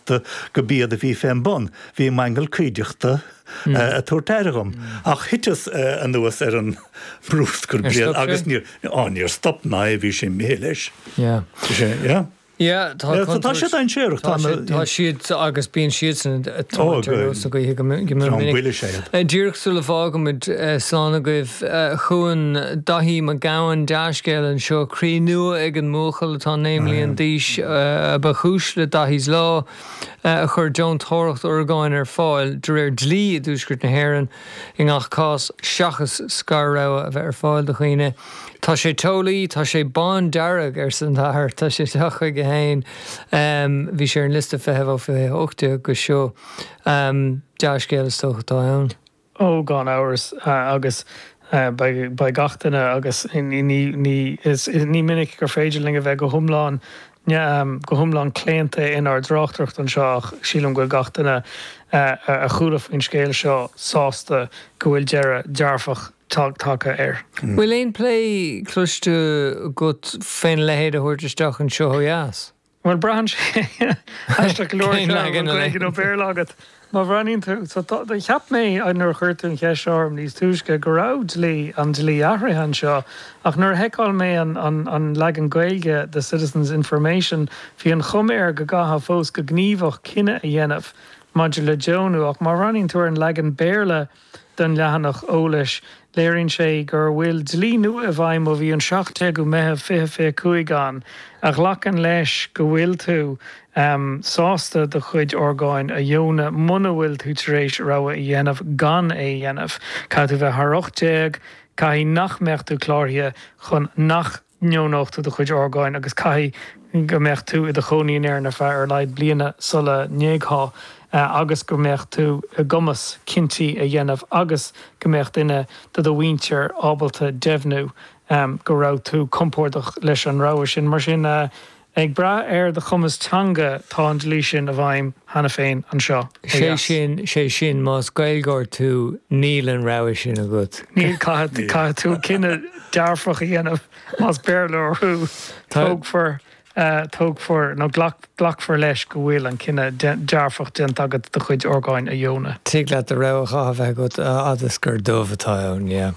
de, go b'iad a bhí fén bun, bhí m'aingeal cuideachta ag tabhairt aire dhom. Ach thuiteas anuas ar an mbrúscar bréan agus níor, á, níor stop ná é, bhí sé imithe leis. Yeah. Yeah, tá contúirt. Tá siad dainséarach. Tá siad agus bíonn siad sa tóir sa gaithe go minic. Díreach sula bhfágaimid slán agaibh Chun Dáithí Mac Gabhann dea-scéal anseo, 'Croí nua ag an mbuachaill atá naoi mbliana d'aois' a ba chúis le 'Dáithí's Law', a chuir deontóireacht orgáin ar fáil, de réir dlí i dTuaisceart na hÉireann, i ngach cás, seachas scor-rogha a bheith ar fáil do dhaoine. 'Tá sé teolaí, tá sé bándearg, arsa an t-athair, 'tá sé ag teacht chuige féin. Bhí sé ar an liosta feithimh ó 2018 go seo. Dea-scéal is dócha atá ann. Ó, gan amhras, agus beidh gach duine, agus ní minic gur féidir linn a bheith go hiomlán, go hiomlán claonta inár dtráchtaireacht anseo ach sílim go bhfuil gach duine a chuala faoin scéal seo sásta go bhfuil deireadh dearfach tagtha air. Bhfuil aon plé cloiste agat fén leithéid a thabhairt isteach anseo ó dheas? Bhuel, braitheann sé. Aisteach go leor, ar an bhfuil Gaeilge nó Béarla agat. Má bhreathnaíonn tú, so tá, cheap mé nuair a chuir tú an cheist seo orm níos túisce go raibh dlí, an dlí athraithe anseo, ach nuair a sheiceáil mé an, an, an leagan Gaeilge de Citizens Information, bhí an chuma air go gcaithfeá fós go gníomhach cinneadh a dhéanamh maidir le deonú, ach má bhreathnaíonn tú ar an leagan Béarla, den leathanach eolais, léiríonn sé gur bhfuil dlí nua i bhfeidhm ó bhí an 17ú Meitheamh 2025 ann a ghlacann leis go bhfuil tú sásta do chuid orgáin a dheonadh muna bhfuil tú tar éis rogha a dhéanamh gan é a dhéanamh. Caithfidh tú bheith thar 18, caithfidh nach mbeadh tú cláraithe chun nach. ndeonódh tú do chuid orgáin agus caithfidh go mbeadh tú i do chónaí in Éirinn ar feadh ar a laghad bliana sula n-éagthá agus go mbeadh tú i gcumas cinntí a dhéanamh agus go mbeadh duine de do mhuintir ábalta deimhniú go raibh tú compordach leis an rogha sin. Mar sin. Ag brath ar do chumas teanga, tá an dlí sin i bhfeidhm cheana féin anseo ó dheas. Sé sin, más Gaeilgeoir tú, níl an rogha sin agat. Níl, caithfidh tú cinneadh dearfach a dhéanamh, más Béarlóir thú, tógfar, tógfar, nó glacfar leis go bhfuil an cinneadh dearfach déanta agat do chuid orgáin a dheonadh. Tig leat do rogha datha a bheith agat, a fhad is gur dubh atá ann, yeah.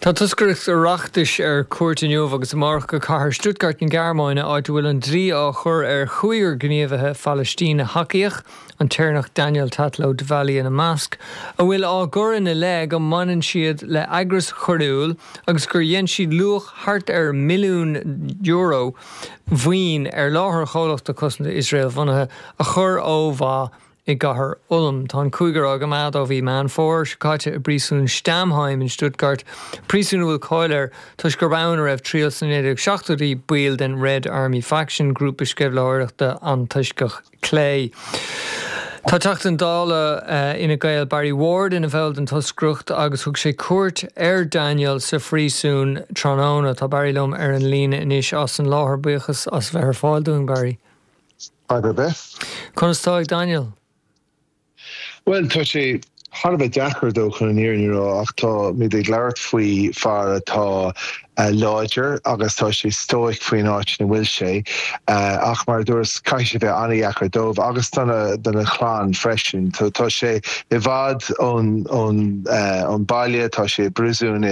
Tá toscaireacht Oireachtais ar cuairt inniu agus amárach go cathair Stuttgart na Gearmáine, áit a bhfuil an dlí á chur ar chúigear gníomhaithe Phalaistín-thacaíoch, an tÉireannach Daniel Tatlow-Devally ina measc, a bhfuil á gcur ina leith go mbaineann siad le heagras choiriúil agus gur dhein siad luach thart ar milliún euro mhaoin ar láthair chomhlachta cosanta Iosrael-bhunaithe a chur ó mhaith i gcathair Ulm. Tá an cúigear á gcoimeád ó mhí Meán Fómhair seo caite i bpríosún Stammheim in Stuttgart, príosún a bhfuil cáil air toisc gurb ann a raibh triail sna 1970idí baill den Red Army Faction, grúpa sceimhlitheoireachta antoisceach clé. Tá Teachta Dála Fhine Gael Barry Ward ina bhall den toscaireacht agus thug sé cuairt ar Daniel sa phríosún tráthnóna. Tá Barry liom ar an líne anois as an láthair. Buíochas as bheith ar fáil dúinn, Barry. Conas tá ag Daniel? Bhuel, tá sé thar a bheith deacair dó, chun an fhírinne a rá, ach táimid ag labhairt faoi fear atá láidir agus tá sé stoic faoin áit ina bhfuil sé. Ach mar a dúras, caithfidh sé a bheith an-deacair dóibh agus dona chlann freisin. Tá sé i bhfad ón baile, tá sé i bpríosún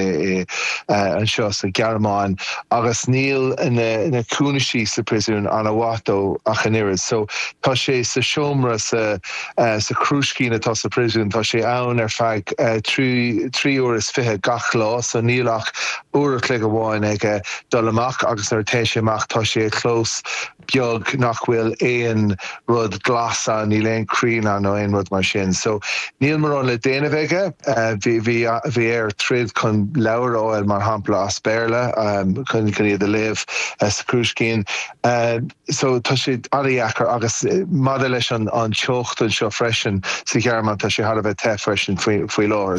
anseo sa Ghearmáin. agus níl na cúinsí sa príosún ana mhaith dó ach an oiread so tá sé sa seomra sa sa chrúiscín atá sa príosún tá sé ann ar feadh trí trí uair is fiche gach lá so níl ach uair a chloig amháin aige dul amach agus nuair a téann sé amach tá sé i gclós beag nach bhfuil aon rud glas ann, níl aon chrainn ann nó aon rud mar sin. So, níl mórán le déanamh aige. Bhí air troid chun leabhair a fháil, mar shampla, as Béarla chun iad a léamh sa chrúiscín. So, tá sé an-dheacair. Agus maidir leis an teocht anseo freisin, sa Ghearmáin, tá sé thar a bheith te freisin faoi láthair.